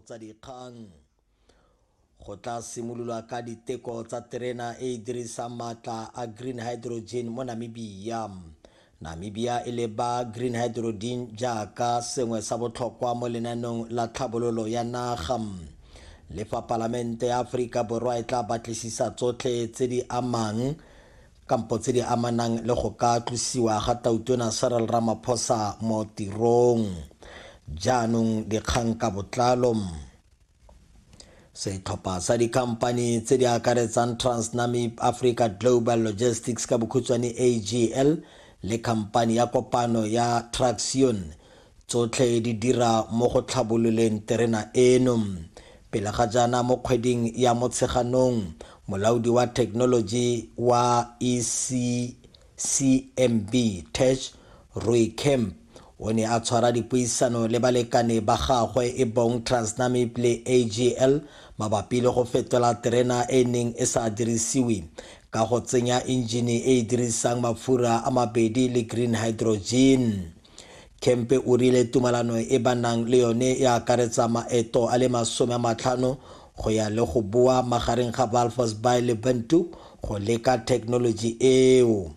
tsa dikgang. Go tla simololwa ka diteko tsa terena e e dirisang maatla a green hydrogen mo Namibia. Namibia e leba green hydrogen jaaka sengwe sa botlhokwa mo lenaneong la tlhabololo ya naga. Le fa Palamente ya Aforika Borwa e tla batlisisa tsotlhe tse di amang kampo tse di amanang le go ka tlosiwa ga Tautona Cyril Ramaphosa mo tirong. Jaanong dikgang ka botlalo. Setlhopha sa dikhamphani tse di akaretsang Transnamib Africa Global Logistics ka bokhutshwane AGL le khamphani ya kopano ya Traxion Tsotlhe di dira mo go tlhabololeng terena eno. Pele ga jaana mo kgweding ya Motsheganong, molaodi wa thekenoloji wa ECCMB Tesh Rooi Kemp o ne a tshwara dipuisano le balekane ba gagwe e bong Transnamib le AGL mabapi le go fetola terena e e neng e sa dirisiwe ka go tsenya enjine e e dirisang mafura a mabedi le green hydrogen. Kempe o rile tumalano e ba nang le yone e akaretsa maeto a le masome a matlhano go ya le go boa magareng ga Walvis Bay le Windhoek go leka thekenoloji eo.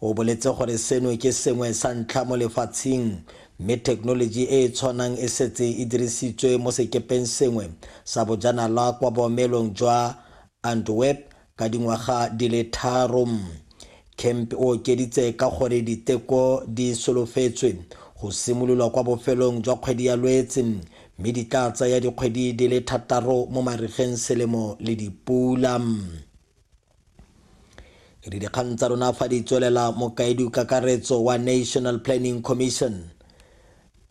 O boletse gore seno ke sengwe sa ntlha mo lefatsheng mme thekenoloji e e tshwanang e setse e dirisitswe mo sekepeng sengwe sa bojanala kwa boomelong jwa Antwerp Ka dingwaga di le tharo, Kemp o okeditse ka gore diteko di solofetswe go simololwa kwa bofelong jwa kgwedi ya Lwetse mme di tla tsaya dikgwedi di le thataro mo marigeng selemo le dipula. E re dikgang tsa rona fa di tswelela, Mokaedikakaretso wa National Planning Commission,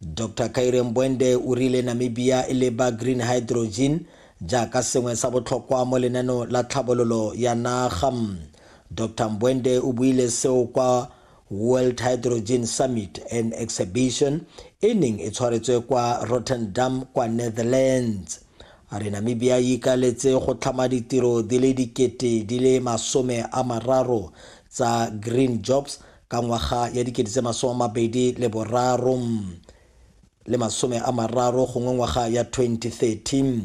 Dr Kaire Mbwende o rile Namibia e leba green hydrogen jaaka sengwe sa botlhokwa mo lenaneo la tlhabololo ya naga. Dr Mbwende o buile seo kwa World Hydrogen Summit and Exhibition e neng e tshwaretswe kwa Rotterdam kwa Netherlands. A re Namibia e ikaeletse go tlhama ditiro di le dikete di le masome a mararo tsa green jobs ka ngwaga ya dikete tse masome a mabedi le boraro le masome a mararo gongwe ngwaga ya 2013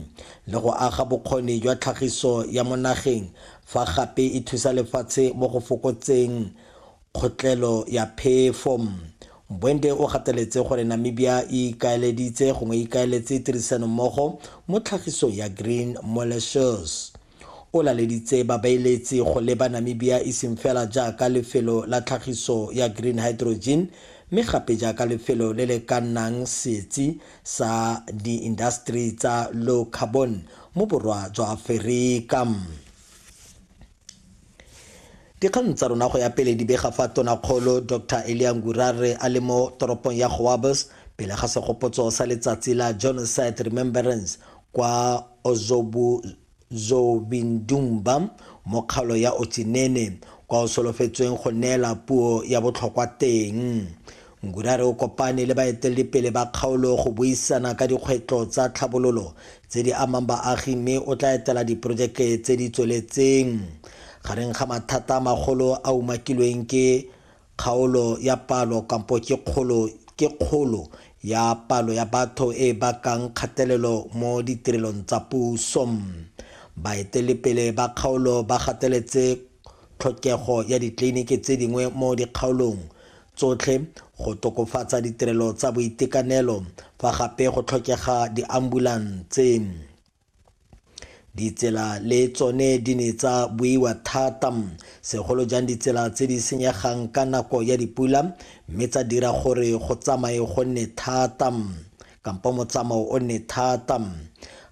le go aga bokgoni jwa tlhagiso ya mo nageng fa gape e thusa lefatshe mo go fokotseng kgotlelo ya phefo. Mbwende o gateletse gore Namibia e ikaeleditse gongwe e ikaeletse tirisanommogo mo tlhagisong ya green molasses. O laleditse babeeletsi go leba Namibia e seng fela jaaka lefelo la tlhagiso ya green hydrogen mme gape jaaka lefelo le le ka nnang setsi sa diindaseteri tsa low carbon mo Borwa jwa Aferika. Dikgang tsa rona go ya pele di bega fa Tonakgolo Doctor Elia Ngurare a le mo toropong ya Goabos pele ga segopotso sa letsatsi la Genocide Remembrance kwa Ozobuzobindumba mo kgalo ya Otsinene kwa o solofetsweng go neela puo ya botlhokwa teng. Ngudare o kopane le baeteledipele ba kgaolo go buisana ka dikgwetlo tsa tlhabololo tse di amang baagi mme o tla etela diporojeke tse di tsweletseng. Gareng ga mathata a magolo a umakilweng ke kgaolo ya palo kampo ke kgolo ke kgolo ya palo ya batho e e bakang kgatelelo mo ditirelong tsa puso. Baeteledipele ba kgaolo ba gateletse tlhokego ya ditleliniki tse dingwe mo dikgaolong tsotlhe, go tokofatsa ditirelo tsa boitekanelo fa gape go tlhokega diambulanse. Ditsela le tsone di ne tsa buiwa thata, segolo jang ditsela tse di senyegang ka nako ya dipula mme tsa dira gore go tsamaye go nne thata. kampo motsamao o nne thata.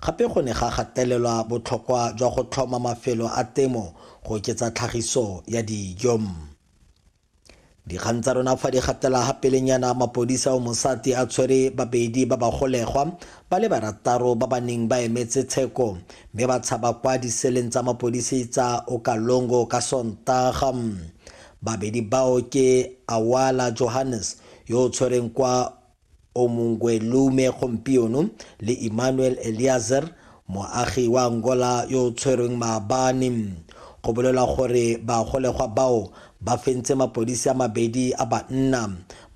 Gape go ne ga gatelelwa botlhokwa jwa go tlhoma mafelo a temo go oketsa tlhagiso ya dijo. Dikgang tsa rona fa di gatela ga pelenyana mapodisa o mosati a tshwere babedi ba bagolegwa ba le barataro ba ba neng ba emetse tsheko mme ba tshaba kwa diseleng tsa mapodisi tsa Okalongo ka Sontaga. Babedi bao ke Awala Johannes yo o tshwereng kwa Omungwelume gompieno le Emmanuel Eliazer, moagi wa Angola yo o tshwerweng maabane. Go bolelwa gore bagolegwa bao ba fentse mapodisi a mabedi a banna,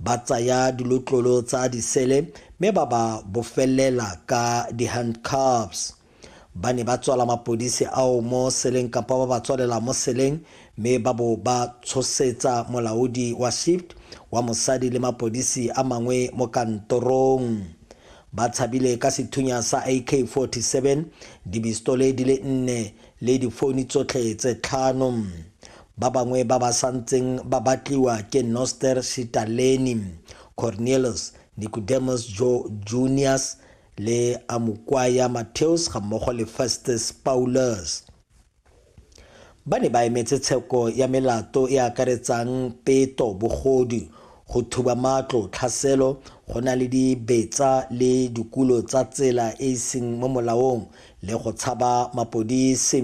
ba tsaya dilotlolo tsa disele mme ba ba bofelela ka di-handcuffs. Ba ne ba tswala mapodisi ao mo seleng kapa ba ba tswalela mo seleng mme ba bo ba tshosetsa molaodi wa shift wa mosadi le mapodisi a mangwe mo kantorong. Ba tshabile ka sethunya sa AK-47, dibistole di le nne le difouni tsotlhe tse tlhano. Ba bangwe ba ba santseng ba batliwa ke Noster Shitaleni, Cornelius Nicodemus Joe Junius, le a Mokwaya Matheos gammogo le Festus Paulus. Ba ne ba emetse tsheko ya melato e akaretsang peto, bogodu, go thuba matlo, tlhaselo, go na le dibetsa le dikulo tsa tsela e e seng mo molaong le go tshaba mapodisi.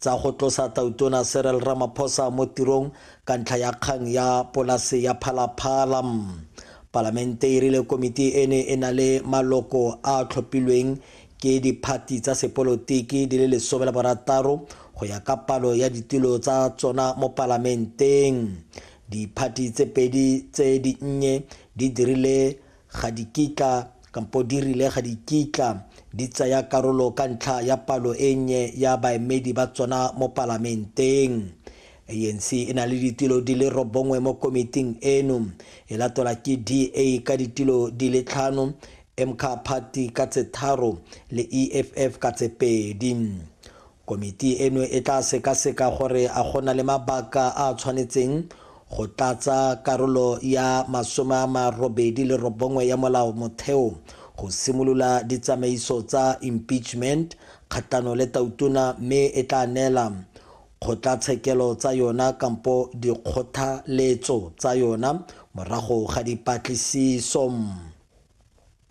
tsa go tlosa Tautona Cyril Ramaphosa mo tirong ka ntlha ya kgang ya polase ya Phalaphala. Palamente e rile komiti e ne e na le maloko a a tlhophilweng ke diphathi tsa sepolotiki di le lesome le borataro go ya ka palo ya ditulo tsa tsona mo Palamenteng. Diphathi tse pedi tse dinnye di dirile Ga di kitla, kampo di rile ga di kitla, di tsaya karolo ka ntlha ya palo e nnye ya baemedi ba tsona mo Palamenteng. ANC e na le ditulo di le robongwe mo komiting eno, e latelwa ke DA ka ditulo di le tlhano, MK Party ka tse tharo le EFF ka tse pedi. Komiti eno e tla sekaseka gore a go na le mabaka a a tshwanetseng go tlatsa karolo ya masome a marobedi le robongwe ya Molao Motheo go simolola ditsamaiso tsa impeachment kgatlhanong le Tautona mme e tla neela kgotlatshekelo tsa yona kampo dikgothaletso tsa yona morago ga dipatlisiso.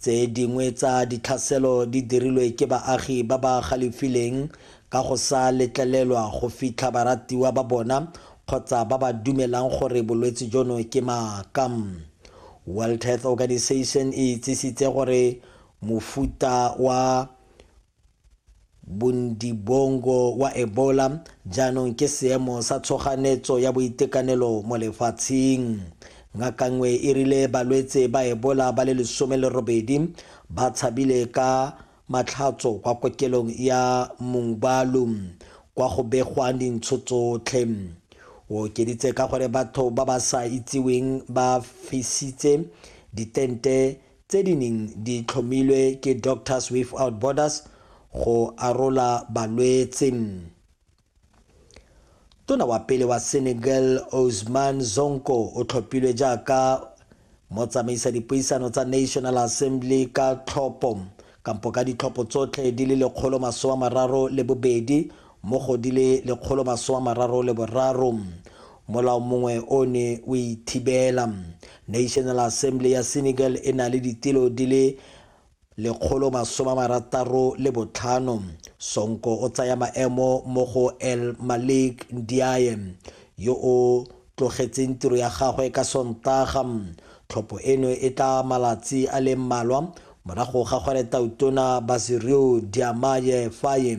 Tse dingwe tsa ditlhaselo di dirilwe ke baagi ba ba galefileng ka go sa letlelelwa go fitlha baratiwa ba bona kgotsa ba ba dumelang gore bolwetse jono ke maaka. World Health Organization e itsisitse gore mofuta wa Bundibongo wa Ebola jaanong ke seemo sa tshoganetso ya boitekanelo mo lefatsheng. Ngaka nngwe e rile balwetse ba Ebola ba le lesome le robedi ba tshabile ka matlhatso kwa kokelong ya Mungbalu kwa go begwang dintsho tsotlhe. O okeditse ka gore batho ba ba sa itsiweng ba fisitse ditente tse di neng di tlhomilwe ke Doctors Without Borders go arola balwetse. Tona wa pele wa Senegal Ousmane Sonko o tlhophilwe jaaka motsamaisa dipuisano tsa National Assembly ka tlhopho kampo ka ditlhopho tsotlhe di le lekgolo masoma mararo le bobedi mo go di le lekgolo masoma mararo le boraro. Molao mongwe o ne o e thibela. National Assembly ya Senegal e na le ditilo di le lekgolo masoma marataro le botlhano. Sonko o tsaya maemo mo go El Malik Ndiaye yo o tlogetseng tiro ya gagwe ka Sontaga. Tlhopho eno e tla malatsi a le mmalwa morago ga go re Tautona Basiryu Diomaye Faye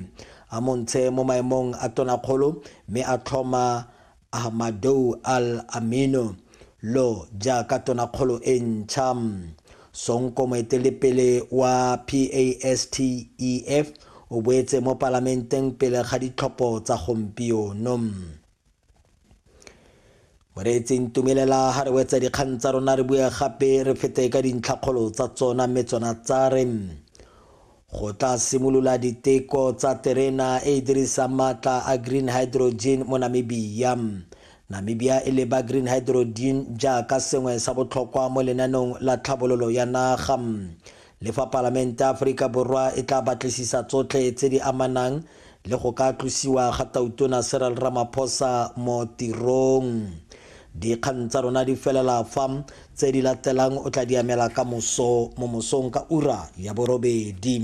a mo ntshe mo maemong a tonakgolo mme a tlhoma Ahmadou Al Amino Lo jaaka tonakgolo e ntšha. Sonko moeteledipele wa PASTEF o boetse mo palamenteng pele ga ditlhopho tsa gompieno. Moreetseng tumelela ha re wetsa dikgang tsa rona re bue gape re fete ka dintlhakgolo tsa tsona mme tsona tsa re go tla simolola diteko tsa terena e e dirisang maatla a green hydrogen mo namibia namibia e leba green hydrogen jaaka sengwe sa botlhokwa mo lenaneong la tlhabololo ya naga le fa palamente ya aforika borwa e tla batlisisa tsotlhe tse di amanang le go ka tlosiwa ga Tautona Cyril Ramaphosa mo tirong. Dikgang tsa rona di felela fa, tse di latelang o tla di amela ka moso mo mosong ka ura ya borobedi.